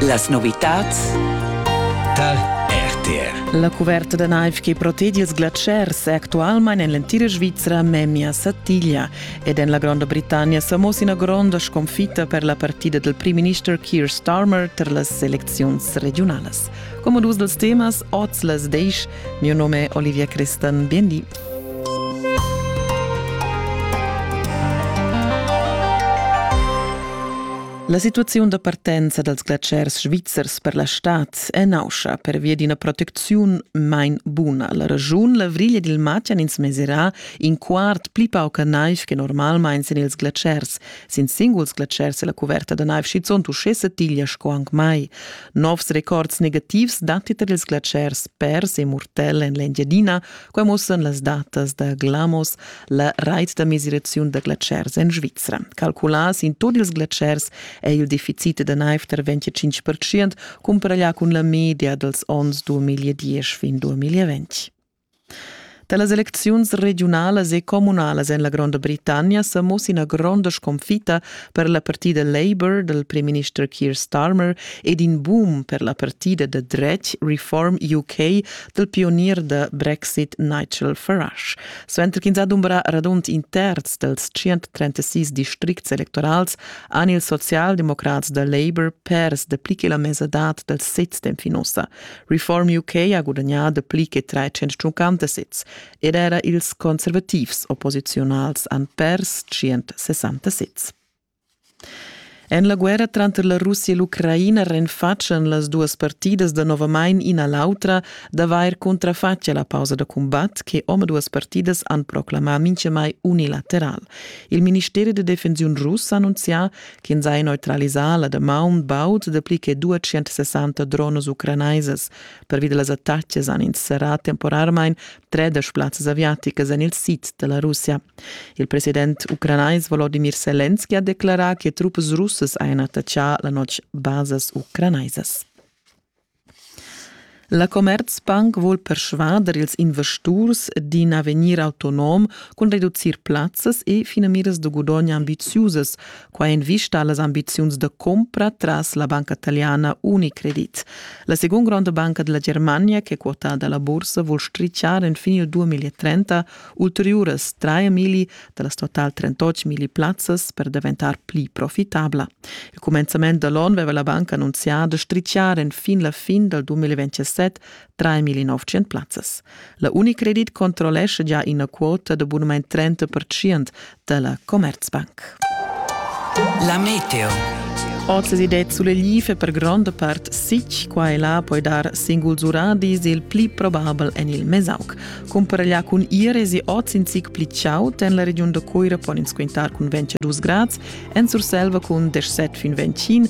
Las novitads tar RTR. La cuverta da naiv che protegia ils glatschers è actualmain en l'entira Svizra memia satiglia ed en la Gronda Britannia sa moss ina gronda sconfitta per la partida del primminister Keir Starmer tar las elecziuns regiunalas. Come dus dels temas, oz las deich, mio nome è Olivia Crestan, bien di. La situaziun da partenza dals glatschers svizzers per la stad è nauscha pervia d'ina protecziun main buna. La regiun l'avriglia dil matg han ins meserà in quart pli pauca naiv che normalmain sin ils glatschers. Sin singuls glatschers è la cuverta da naiv schizunt uschè satiglia sco anc mai. Novs records negativs datti tar ils glatschers pers e murtell en l'Engiadina, Quai mussan las datas da Glamos, la rait da mesiraziun da glatschers en Svizra. Calculà sin tut ils glatschers è il deficit da naiv tar 25% cumparaglià cun la media dals onns 2010 fin 2020. Da las elecziuns regiunalas e communalas en la Gronda Britannia sa mussa ina gronda sconfitta per la partida Labour dal primminister Keir Starmer ed in boom per la partida da dretg Reform UK dal pionier da Brexit Nigel Farage. Suenter ch'ins adumbra radund in terz dals 136 districts electorals han ils socialdemocrats da Labour pers dapli che la mesadad dal sez temp fin ussa. Reform UK ha gudagnà dapli che 350 sezs ed era ils conservativs opposiziunals han pers 160 sezs. En la guerra tranter la Russia e l'Ucraina renfatschan las duas partidas danovamain ina l'autra d'avair cuntrafatg a la pausa da cumbat che omaduas partidas han proclamà mintgamai unilateral. Il ministeri da defensiun russ ha annunzià ch'ins ha neutralisà la damaun baud dapli che 260 drones ucranaisas. Pervi da las attacas han ins serrà temporarmain tredesch plazzas aviaticas en il sid da la Russia. Il president ucranais Volodimir Selenski ha declarà che truppas russas hajan attaccà la notg basas ucranaisas. La Commerzbank vuol persvader ils investurs d'in avegnir autonom cun reducir plazzas e finamiras da gudogn ambitiusas, Quai en vista a las ambiziuns da cumpra tras la banca italiana Unicredit. La segunda gronda banca della Germania, che è quotà dalla borsa, vuol stricciar enfin il 2030 ulteriuras 3.000 dallas total 38.000 plazzas per daventar pli profitabla. Il commenzament da l'on aveva la banca annunziato stricciare fin la fin dal 2027 3.900 plazzas. La Unicredit controllescha già ina quota da bunamain 30% da la Commerzbank. La meteo. Oz si det sulle life per gronda part sic, qua e là poi dar singuls uradis il pli probabel en il Mesauk. Cumparaglià cun Ires e oz in zic pli chaud en la regiun da Coira pon ins quintar cun 22 grads, en Surselva cun 17 fin 25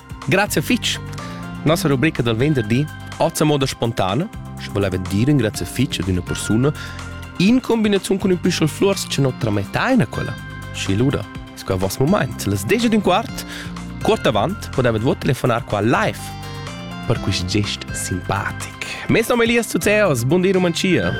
Grazie fitch. Nossa rubrica del venderdi oz a moda spontana, sche voleva dire grazie fitch ad una persona in combinazione con un püschel flors che non trametta eine quella. Schi luda, sco a vos moment, les deja d'un quart, quart avant potevet vo telefonar qua live per quist gest simpatic. Mes nom è Elias Zuzeos, bom dia Romantia.